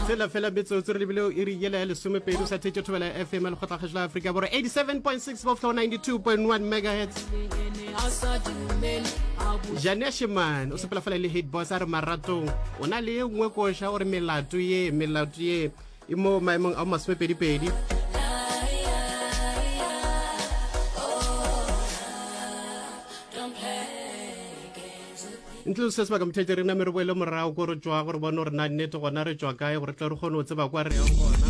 fela fela metsotso re lebile o iri yela ya lesomepedi o sa thetše thobela ya fm ya lekgotlakgašo la aforika borwa 87.6 boflo 92.1 megahertz jane shemane o sepela fela le hitbos a re maratong o na le ye nngwe koša gore melato ye melato ye e mo maemong a masomepedipedi ntle le se sebaka mothete re name re boele morago ko re tswa gore bone gore na nnete gona re tswa kae gore tle re kgone go tseba kwa re yang gona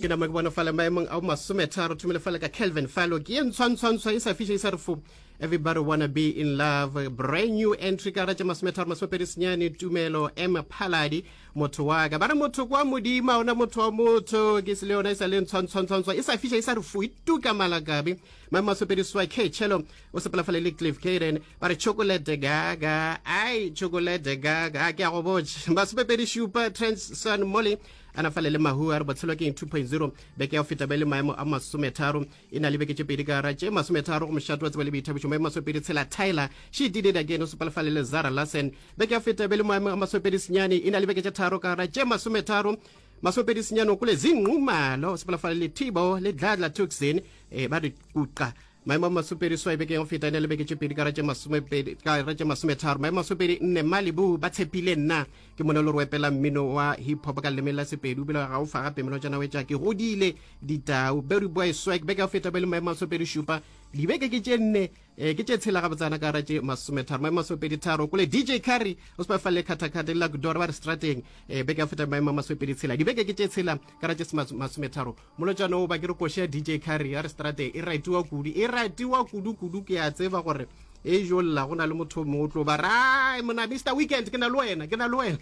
ke nama ke bone fale maemong a masome tharo thomile fale ka calvin falo ke ye ntshwantshwantsha e sa fiša e sa re fo everybody wanna be in love brand new entry ka ratša masome tharo masome pedi senyane tumelo m phaladi motho wa ka ba re motho kwa modima ona motho wa motho ke se le yona e sa le ntshwantshwantshwantsha e sa fiša e sa re fo ituka malakabe maemo masome pedi swa k chelo o sepela fale le cliff caden ba re chocolate gaga ai chocolate gaga a ke a go botša masomepedi šupa transon molly a na fale le mahu a re botshelo ke 2.0 beke ya go feta ba le maemo a masometharo e na le beke tše pedi ka gara tše masometharo go mošato wa tseba le boithabišo maemo masomepedi tshela tyler she did it again o sopalefale le zara lassen beke ya go feta ba le maemo a masomepedi senyane e na le beke tše tharo ka gara tše masometharo masomepedi senyane o kole zingqumalo o sopalefale le tibo le dladla tuxin e eh, ba re kuqa maemo a masopedi swae bekeng go feta ne le beke tše pedi kara tše masomepedi kara tše masometharo maemo masopedi nne malibu ba tshepile nna ke mone le roepela mmino wa hip hop ka leleme la sepedi o bile ga o fa gape meno tša nawe tša ke godile ditau berry boy swag beke go feta ba le maemo masopedi šupa dibeke ke tše nne eh, ke tše tshela gabotsana kara tše masometharo maemo masopedi tharo kole dj carry o se ba falele khathakhatha le la kudora ba re strateng eh, beke go feta maemo masopedi tshela dibeke ke tše tshela kara tše masometharo molotšana o ba ke re koši ya dj carry ya re strate e ratiwa kudu e ratiwa kudu kudu ke a tseba gore e jo lla go na le motho mongwe o tlo ba rai mona mr weekend ke na le wena ke na le wena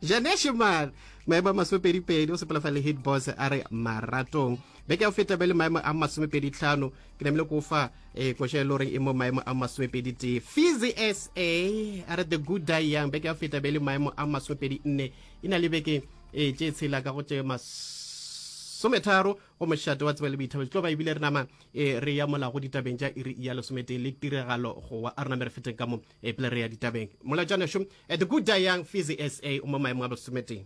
janeshe man maemo a masomepedipedi o sepela fa le hit boss a re maratong beke ya go feta be le maemo a masomepedi tlhano ke namile ko fa e koša e le goreng e mo maemo a masomepedi tee fizi sa a re the good die young beke ya go feta be le maemo a masomepedi nne e na le beke e tše tshela ka go tše masometharo go mošate wa tseba le boithabelo tlo ba ebile re nama e re ya molago ditabeng tša iri ya lesometee le tiragalo go wa a re name re feteng ka mo e pele re ya ditabeng molatswaneso eh, the good young fizzy sa o mo maemo a bosometee